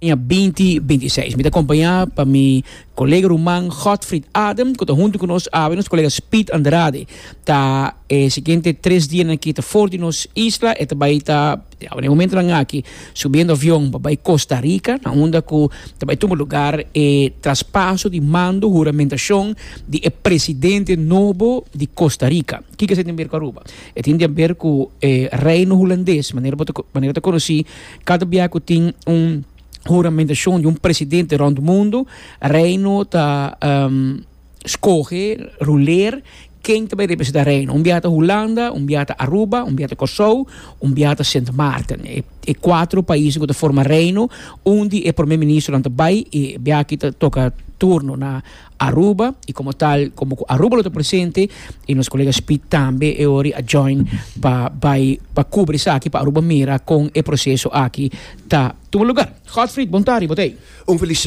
aña binti binti i seis. Mi ta acompañá pa mi colega ruman Godfried Adem, cu ta hunto cu nos awe, nos colega Speed Andrade ta e siguiente tres dianan aki ta for di nos isla, e ta bai ta, awe na e momentonan aki, subiendo avion pa bai Costa Rica, na unda cu ta bai tuma lugar e traspaso di mando, huramentacion, di e presidente nobo di Costa Rica. Kiko esei tin ber cu Aruba? E tin den ber cu e Reino Hulandes, manera bo ta, manera ta conoci, Kada bia ku tin un huramentashon di un presidente rònt mundu, Reino ta skohe, ruleer, ken ta bai representá Reino. Un bia ta Hulanda, un bia ta Aruba, un bia ta Kòrsou, un bia ta Sint Maarten. E e kuater paisnan ku ta forma Reino, un di e prome ministernan ta bai i biaki ta toka turno na Aruba y como tal como cu Aruba lo ta presente y nos colega Speed tambe e ori a join pa bay pa cubri esaki pa Aruba mira con e proceso aki ta tuma lugar. Godfried, bon tardi botei. Un feliz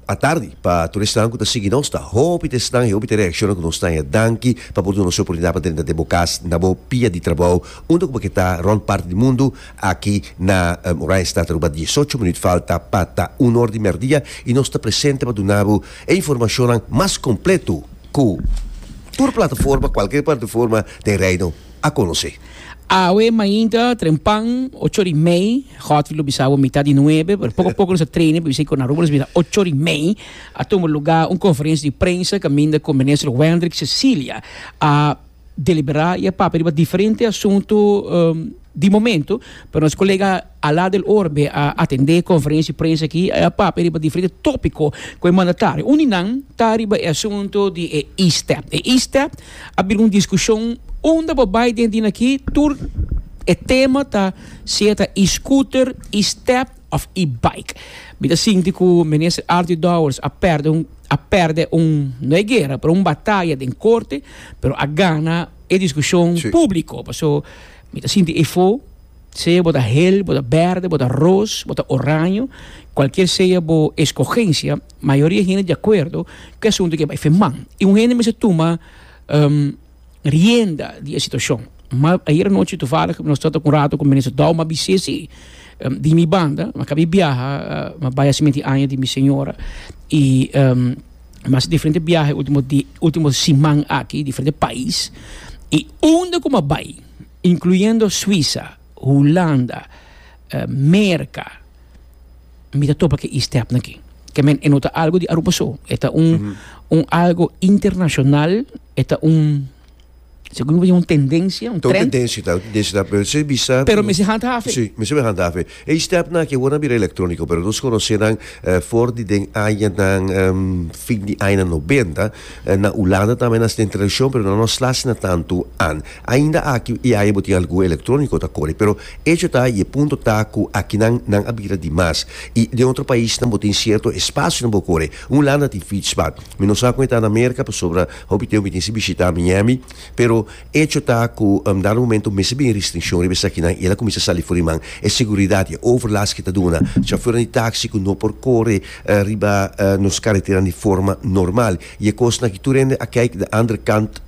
atardi pa tur esnan cu ta sigui nos. Ta hopi ta esnan y hopi ta reacciona cu nos ta ya. Danki pa por duna nos e oportunidad pa drenta den bo cas na bo pia di trabou unda cu bo ke ta rond parti di mundu. Aki na Oranjestad Aruba diesocho minuut falta pa ta uno or di merdia y nos ta presente pa duna bo e informacionnan mas completo cu tur plataforma, cualkier plataforma den Reino a conoce. Awe mainta trempan ocho ori mei, Godfrey lo bisa bo mitad di nuebe, pero poco poco nos a traine pa bisa cu na Aruba nos bisa ocho ori mei a tuma lugar un conferentie di prensa caminda cu Minister Wendrick Cecilia a deliberá i a papia riba diferente asuntu di momentu, pero nos kolega Alá del Orbe a atendé konferensia di prensa akí, i a papia riba diferente tópiko ku e mandatario. Un di nan ta riba e asuntu di e E-step. E E-step a bira un diskushon unda bo bai den di nan akí tur e tema ta sea ta E-scooter, E-step, of i bike. Mi ta sinti ku Minister Artie Dowers a perde un a perde un no e guera pero un bataya den korte pero a gana e diskushon Sí. públiko paso mi ta sinti efo sea bo ta hel bo ta berde bo ta ros bo ta oraño kualkier sea bo eskogensia mayoria hende di akuerdo ku e asuntu ke bai firmá i un hende mester tuma rienda di e situacion. Ma ayer anochi toevallig nos trata cu un rato cu Minister Douw ma bis'e si di mi banda mi a cab'e biaha ma bay haciendo e aña di mi señora y mi haci diferente biaha ultimo dia ultimo siman aki diferente pais y unda cu mi a bay incluyendo Suiza, Hulanda, Merca. mi ta topa ke ISTEP na ki. Ke men e no ta algo di Aruba so. E ta un, un algo internacional, e ta un, segun mi ta bisti un tendencia, un Ta un trend. tendensia, ta un tendensia ta, pero esei bisa Pero mester handhaven. Sí, mester men handhaven. E ISTEP nan aki awor nan a bira electronico, pero nos conoce nan for di den añanan fin di añanan noventa. Na Hulanda tambe nan den tradicion pero nan no a slash nan tantu an. Ainda aki e aña bo tin algun electronico ta kore pero Echo ta y e punto ta cu akinan nan a bira di mas y den otro paisnan bo tin cierto espacionan bo core. Un landa tin fietspad. Mi no sa con e ta na Merca pasobra hopi teo mi tin si bishita Miami pero echo ta cu dado momento mester bin e restriccion riba esakinan y el a cuminsa sali for di man. E seguridad y e overlast cu ta duna chafernan di taxi cu no por core riba nos carreteran di forma normal y e cosnan aki tur hende a kijk de andere kant.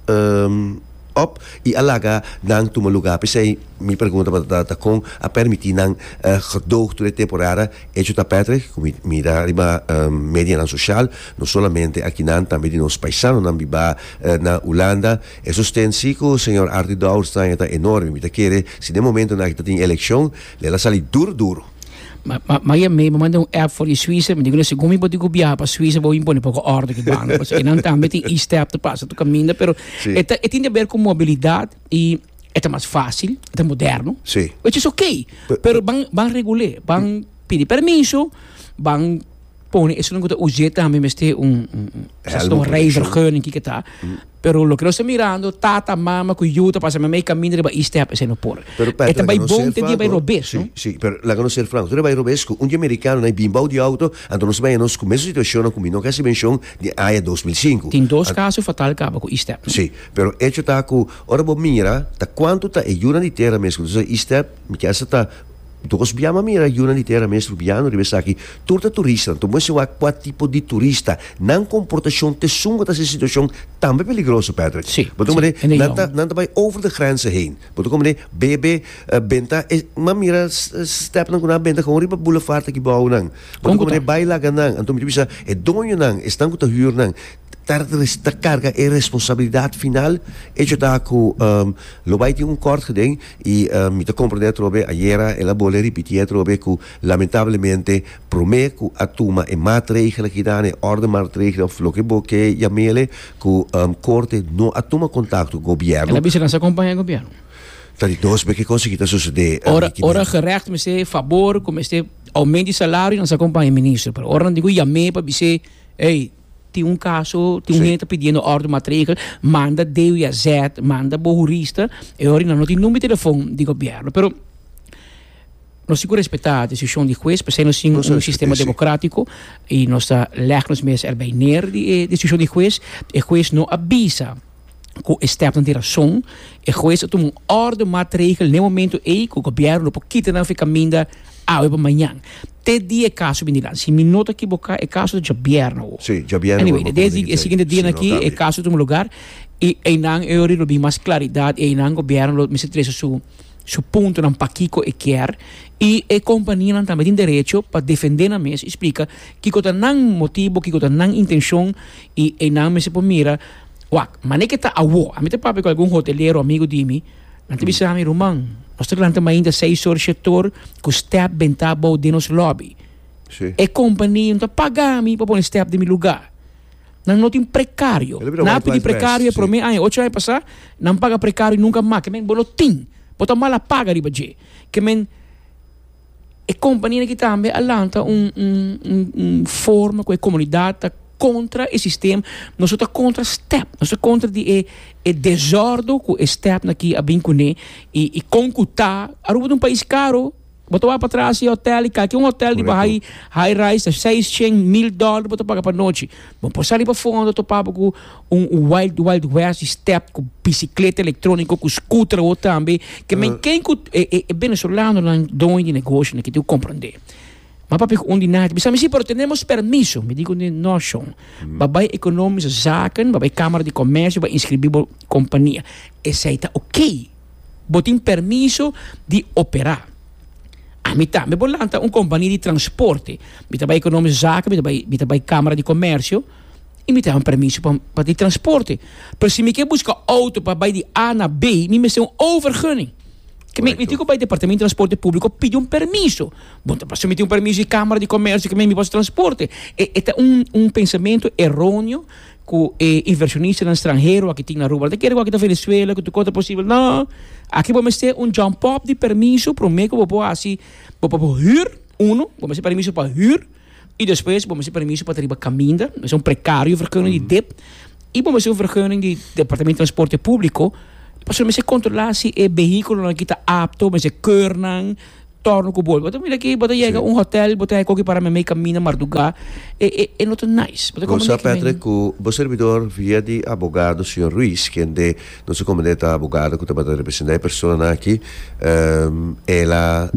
op y a laga nan tuma luga pesey mi pregunta pa ta ta con a permiti nan gedoog tur e temporada echo ta Patrick cu mi mira riba medianan social no solamente akinan tambe di nos paisanonan biba na Hulanda e sosten si cu señor Artie Douwestein e ta enorme mi ta kere si den momentonan aki ta tin eleccion lel a sali duro duro. Ma, ma, ma ya me, me manda un app for in Suiza, me digo na según mi bo digo viaja pa Suiza, bo impone poco orde ki banco, pues enan tambe tin e-step te pasa tu caminda, pero Sí. eta, e tin de ver con mobilidad y eta mas fácil, eta moderno, Sí. which is okay, Pe- pero ban, ban regulé, ban pidi permiso, ban pone esun ku ta us'é tambe mester un un reivergeuning kiko ta pero loke nos ta mirando tata mama ku yu ta pasa meme kaminda riba e step esei no por e ta bai bon te dia bai rob'é no si pero laga nos ser franko tur e bai rob'é esku un dia merikano na e bin bou di outo anto nos ta bai anos ku mesun situashonnan ku mi no kasi menshon di aña dos mil sinku tin dos kaso fatal kaba ku e step no si pero echo ta ku ora bo mira ta kuantu ta e yunan di tera mes ku ta usa e step mi kier sa ta. Dos bia mami era yuna di tera mester biano riba esaki tur ta turistanan tur moe siwa kua tipo di turista nan komportashon ta esun ku ta hasi e situashon tambe peligroso Patrick Si, bo ta si, kende nan ta yon. nan ta bai over de grenzen heen bo ta kome bebe benta e m'a mira stepnan ku nan a benta gewoon riba boulevard aki bou nan bo Kon ta ku kome ta? bai laga nan anto mi ta bisa e doñonan esnan ku ta hür nan ta karga e responsabilidat final, e hecho ta ku lo bai tin un kort gden i mi ta komprende atrobe ayera el a bole ripitié atrobe ku lamentablemente promé ku a tuma e maatregel aki nan e orde maatregel òf loke bo ke yamele ku korte no a tuma kontakto gobièrnu. El a bisa nan sa kompaña gobièrnu. Ta di dos be ke kos aki ta sosodé. Ora ora gerècht mester fabor ku mester oument di salario nan sa kompaña e minister pero ora nan tin ku yam'é pa bis'é ey Tin un kaso, tin un hende ta pidiendo òrdu matregel, manda DWAZ, manda bo hurista, e hora nan no tin number di telefòn di gobièrnu. Pero, nos tin ku respetá desishon di hues, p'esei nos tin un sistema demokratiko i nos ta lèg nos mes erbei ner di e desishon di hues. E hues no a bisa. cu e stepnan tin razon, e hues a tuma un orde matregel n'e momento ey cu gobierno lo por kita nan afe caminda awe pa mañan. Te dia e caso bini nan. Si mi no ta ekiboká e caso ta djabièrnè awo. Sí, djabièrnè awo. Anyway, desdi e siguiente dianan aki e caso a tuma lugar i eynan eori lo bin mas claridad i eynan gobierno lo mester trese su su puntonan pakiko e kier i e companianan tambe tin derecho pa defendé nan mes i splika kiko ta nan motibo, kiko ta nan intencion i eynan mester por mira Wak, mané ke ta awo, ami ta papia ku algun hotelero amigu di mi, nan ta bisa mi, Ruman, nos ta lanta mainta seis or, shete or ku stèp den ta abou den nos lòbi. Sí. E kompania no ta paga mi pa pone stèp den mi lugá. Nan no tin prekario. Elebira Nan a white pidi lies best, prekario e sí. promé aña, ocho aña pasá, nan paga prekario i nunka mas. Ke men, bo lo tin. Bo ta mal a paga riba dje. Ke men. e kompaninan aki tambe a lanta un forma ku e komunidat ta kontra e sistem, nos no ta kontra stèp, nos ta kontra di e desòrdo ku e stèpnan aki a bin kuné i kon ku ta, Aruba ta un pais karu, bo ta wak patras i hòtèl i kalke un hòtèl di bai high rise ta seis shen mil dòlèr bo ta paga pa nochi. Bo por sali pafó unda bo ta topaba ku un wild wild west di stèp ku bisikleta elektróniko ku skuter awo tambe ke men ken ku e benesolanonan doño di negosio na kiti ku komprondé. Ma papia ku un di nan a bisa mi, sí, pero tenemos permiso. Mi di ku nan, no shon, bo a bai Ekonomische Zaken, bo a bai Kamara di Komèrsio, bo a inskribí bo kompania. Esei ta oké. Bo tin permiso di operá. Ami tambe por lanta un kompania di transporte. Mi ta bai Economische Zaken, mi ta bai, mi ta bai Kamara di Komersio i mi ta hava un permiso pa, pa di transporte. Pero si mi ke buska outo pa bai di A na B, mi mester un overgunning. Ke mi, mi tin ku bai Departamento di Transporte Públiko pidi un permiso. Bo ta sumití un permiso di Kamara di Komersio, ke mi, mi por hasi transporte. E, e ta un, un pensamentu eronio. cu e inversionistanan stranhero aki tin na Aruba, lo ta kere cu aki ta Venezuela, cu tur cosa ta posibel. No! Aki bo mester un jump-up di permiso prome cu bo por haci, bo por por huur, uno, bo mester permiso pa huur, y despues bo mester permiso pa ta riba caminda, mester un precario vergunning di dip, y bo mester un vergunning di Departamento Transporte Publico, pasobra mester controla si e vehiculonan aki ta apto, mester keur nan. Torno ku bo bo ta mira aki bo ta yega un hotel bo ta hay koki para meme kamina marduga e e e no ta nice bo ta Bo sa Patrick ku bo serbidor via di abogado señor Ruiz kende nos a komende ta abogado ku tabata representá e personanan aki el a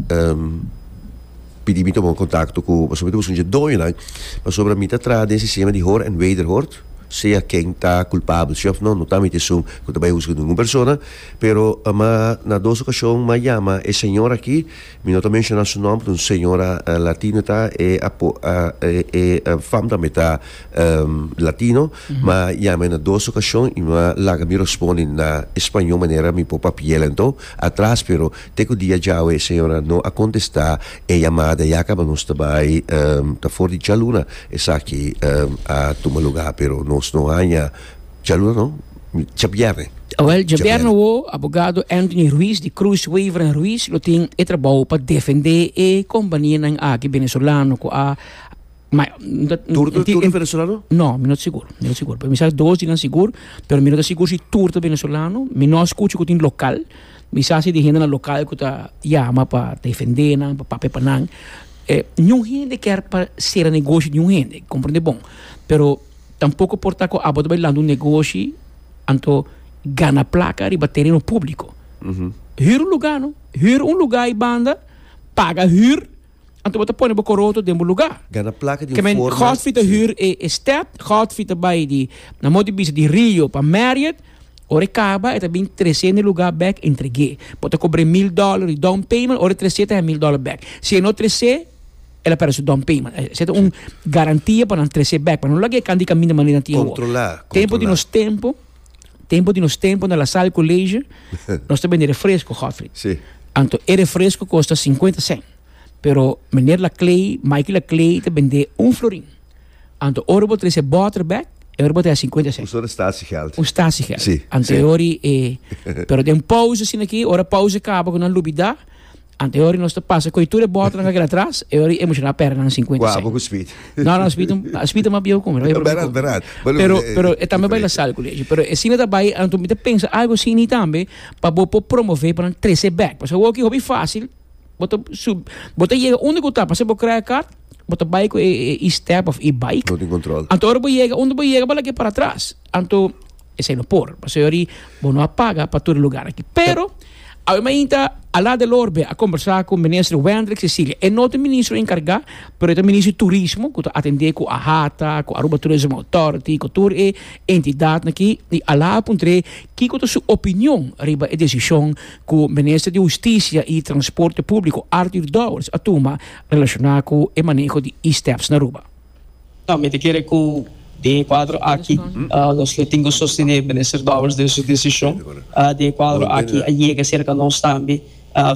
pidi mi tuma un kontakto ku boso mi ta busca un dje doñonan pasobra mi ta traha den sistema di hoor en wederhoord sea ken ta kulpabel si òf no no ta mi ta esun ku ta bai husga ningun persona. Pero ma na dos ocasion ma yama e señor aki, mi no ta menciona su nom, un señora latino ta, e apo, e fam tambe ta latino, ma yamae na dos ocasion y ma laga mi respondi na español manera mi por papiela enton atras pero te cu dia djawe e señora no a contesta e yamada ya caba nos ta bay ta for di djaluna esaki a tuma lugar pero nos no haya Djaluna no, djabièrnè. Awèl, djabièrnè wou, abogado Anthony Ruiz di Cruz Wever en Ruiz lo tin e trabou pa defendé e kompanianan aki venezolano ku a Tur ta tur venezolano? No, mi no ta sigur, mi no ta sigur. Pero mi sa ku dos di nan sigur, pero mi no ta sigur si tur ta venezolano. Mi no a skucha ku tin lokal. Mi sa si di hendenan lokal ku ta yama pa defendé nan, pa papia pa nan. Niun hende kier pa sera negoshi di niun hende, komprende bon. Pero. Tampoco por ta cu abo ta bay lanta un negoshi anto gana placa riba tereno publico. Huur un lugar no. Huur un lugar y banda paga huur anto bo ta pone bo coroto den bo lugar. Gana placa di un forma. Kemen Godfrey ta huur e step, Godfrey ta bay di na motor bisa di Rio pa Marriot, ora e caba e ta bin trece n'e lugar bek entregue. Bo ta cobra e mil dollar di down payment, ora e trece ta he mil dollar bek. Si e no trece. el a perda su down payment. E seta un garantia pa nan trece back, pa no laga e kan di kaminda manera tin awo. Controla, Tempo di nos tempo, tempo di nos tempo na La Salle College, nos ta bende refresco, Godfrey. Sí. Anto e refresco kosta 50 cent. Pero meneer Laclay, Mikey Laclay ta bende un florin. Anto ora bo trece boter back, e ora bo ta ya 50 cent. Usa de statiegeld. Un statiegeld. Sí, Anto sí. e ori e pero den pauze asina aki, ora pauze kaba ku nan lubida, Ante e ori nos ta pasa koe tur e bòtnan ka keda atras, e ori e musha na pèrdè nan sinkuenta Kua abo ku spit? No, no, spit spit ta mas bieu ku mi. Lo Berat, e berat. Bo lo Pero, pero e tambe bai la diferente. sal ku leche. Pero e asina ta bai, anto mi ta pensa algo asini tambe pa bo por promove pa nan trese bek. Paske awor ki hopi fácil, bo ta sub, bo ta yega unda ku ta, paske bo krai e kart, bo ta bai ku e e e-step of e-bike. No tin control. Anto ora bo yega unda bo yega, bo laga e para atras. Anto Esei no por, pasobra yori bo no a paga pa tur e lugar aki. Pero, awe mainta Alain Delorbe a kombersá ku minister Wendrick Cecilia. E no ta ministro enkargá, pero e ta ministro di turismo ku ta atendé ku AHATA, ku Aruba Tourism Authority, ku tur e entidatnan aki. I Alain a puntr'é kiko ta su opinion riba e desishon ku minister di hustisia i transporte públiko, Arthur Dowers, a tuma relashoná ku e maneho di e-steps na Aruba. Mi ta kere ku den e kuadro aki nos lo tin ku sostené minister Dowers den su desishon. Den e kuadro aki a yega serka nos tambe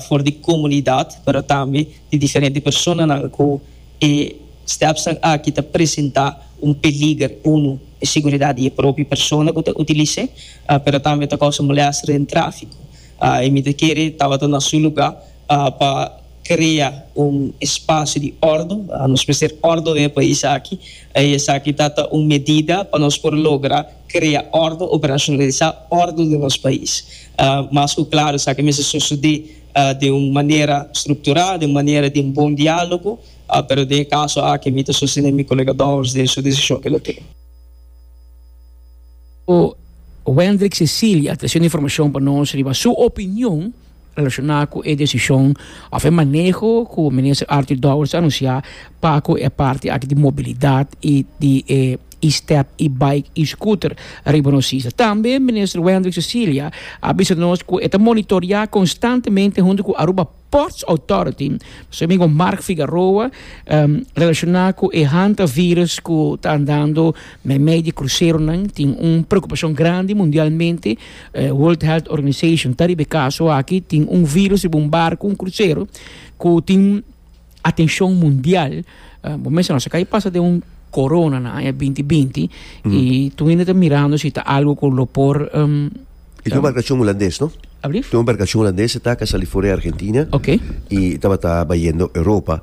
for di komunidat pero tambe di diferente personanan ku e stèpsnan aki ta presentá un peliger. Uno e seguridat di e propio persona ku ta utilis'é pero tambe ta kousa molèster den tráfiko. Mi ta kere tabata na su lugá. pa krea un espasio di òrdu. Nos mester òrdu den e pais aki i esaki ta ta un medida pa nos por logra krea òrdu, operasionalisá òrdu den nos pais. Mas ku klaru esaki mester sosodé den un manera strukturá, den un manera den bon diálogo, pero den e kaso aki mi ta sostené mi kolega Dowers den su desishon ku el a tin. Wendrick Cecilia ta hasiendo informashon pa nos riba su opinion. Relacioná cu e decision of e maneho cu Minister Arthur Dowers a anuncia pa cu e parti aki di mobilidad y di e e-step, e-bike y scooter riba nos isla. Tambe Minister Wendrick Cecilia a bisa nos cu e ta monitorea constantemente hunto cu Aruba Ports Authority, nos amigo Mark Figaroa, relacioná cu e hanta virus cu ta andando meimei di cruceronan. Tin un preocupacion grandi mundialmente. World Health Organization ta riba e kaso aki, tin un virus riba un barku, un krusero, ku tin atenshon mundial. Bo mester nos a kai pasa den un korona na aña binti binti, i tuwinda ta mirando si ta algu ku lo por. E tin un barkashon hulandes, no? Tin un barkashon hulandes, e ta ka sali for e Argentina i tabata bai yendo Europa.